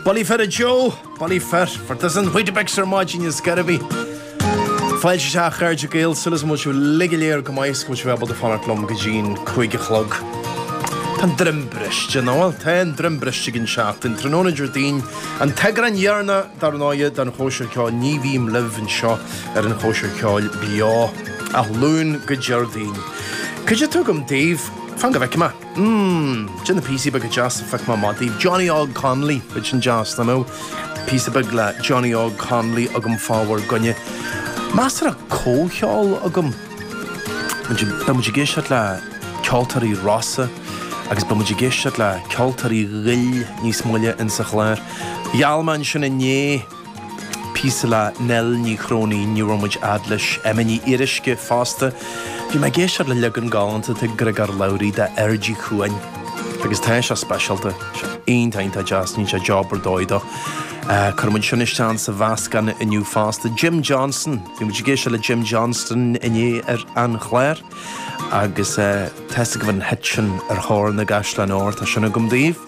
Bullaí fir a Joe, bullaí fir, for does an Weetabix ar maidin is gairbhí. Fáilte isteach a chairde Gael, súil agam go bhfuil sibh uilig go léir go maith is go bhfuil sibh ábalta fanacht liom go dtí'n cúig a chlog. Tá an droim briste, nach bhfuil? Tá an droim briste ag an tseachtain, tráthnóna Déardaoin, an t-eagrán deireanach dar ndóighe den chóisir ceoil, nuair a bhím libh anseo ar an chóisir ceoil beo ó Luan go Déardaoin. Caidé atá agam daoibh, fan go bhfeicim a'. Mmm, tá píosaí beaga deasa faighte amach daoibh. Johnny Óg Connolly, muise tá sin deas, I know. Píosa beag le Johnny Óg Connolly agam fá bhur gcoinne. Measartha cuid ceoil agam. Beidh muid ag éisteacht le Ceoltóirí Rosa agus beidh muid ag éisteacht le Ceoltóirí Ghoill níos moille insa chláir. Gheall mé sin inné. Píosa le Nell Ní Chróinín, níor shroich muid fhad leis. Emma Ní Fhíoruisce, fosta. Bhí mé ag éisteacht le leagan galánta de Griogal Cridhe, d'Airdí Cuain. Agus tá sé speisialta. Shantaigh mé é, tá jab ar dóigh déanta. Cuirfidh muid sin isteach sa mheascán inniu fosta. Jim Johnston, bhí muid ag éisteacht le Jim Johnston inné ar an chlár. Agus teastaigh agaibh an hit sin Ar Thóir na gCaisleán Óir tá sin agam daoibh.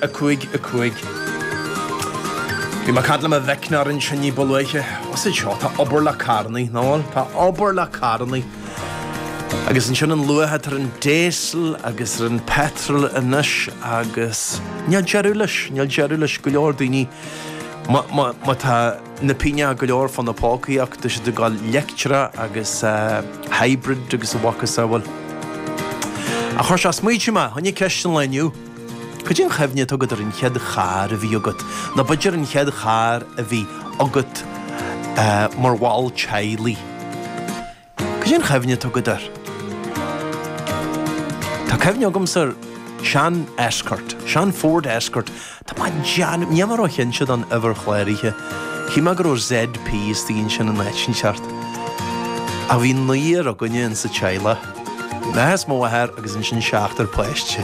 5 5 Bhí mé ag caint le mo mhac ansin ní ba luaithe. Ossie, seo, tá obair le carrannaí, nach bhfuil? Tá obair le carrannaí. Agus ansin an luach atá ar an diesel agus ar an petrol anois agus níl deireadh leis, níl deireadh leis. Go leor daoine, ma, ma, ma tá na pingneacha go leor fá na pócaí acu tá siad ag gabhail leictreach agus eh, hybrid agus a macasamhail. Ach chuir sé ag smaointiú mé fá choinne cheist an lae inniu. Cad é an chuimhne atá agat ar an chéad charr a bhí agat? Nó b'fhéidir an chéad charr a bhí agat mar bhall teaghlaigh? Cad é an chuimhne atá agat air? Tá cuimhne agamsa ar sean Escort, sean Ford Escort. Tá mé den, níl mé róchinnte den uimhir chláraithe. Shíl mé go raibh ZP istigh ansin áit inteacht. Ach bhí naonúr againne insa teaghlach. Maith is mó a fhear agus ansin seachtar páiste.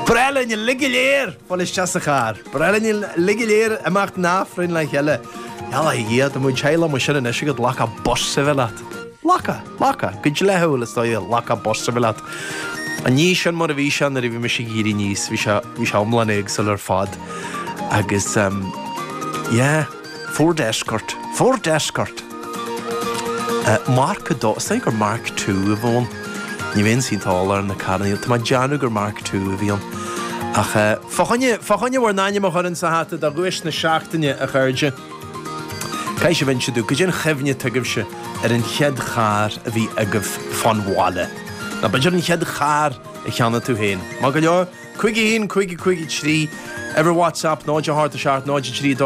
Breá linn a lig go léir fáil isteach sa charr. Breá linn a lig go léir imeacht in Aifreann le cheile. Yala a Dhia, tá muid teaghlaigh liom ansin anois agat lacha Bosribhe leat. Lacha, lacha, go dleathaúil is dóigh, lacha Bosribhe leat. An ní sin mar a bhí sé nuair a bhí mise ag iarraidh níos, bhí sé, bhí sé iomlán éagsúil ar fad. Agus, yeah. Ford Escort! Ford Escort! Mark 2, is dóigh gur Mark 2 a bhí ann. Ní bheinnse iontach eolach ar na carranna. Tá mé ag déanamh gur Mark 2 a bhí ann. Ach fá, fá choinne bhur n-ainm a chur insa hata do dhuais na seachtaine, a chairde. Caithfidh sibh inse domh, goidé an chuimhne atá agaibhse ar an chéad charr a bhí agaibh fán bhaile. Nó b'fhéidir an chéad charr a cheannaigh tú féin. Maith go leor, 51 55 3 Ar Whatsapp, 0 4 7 0 3 2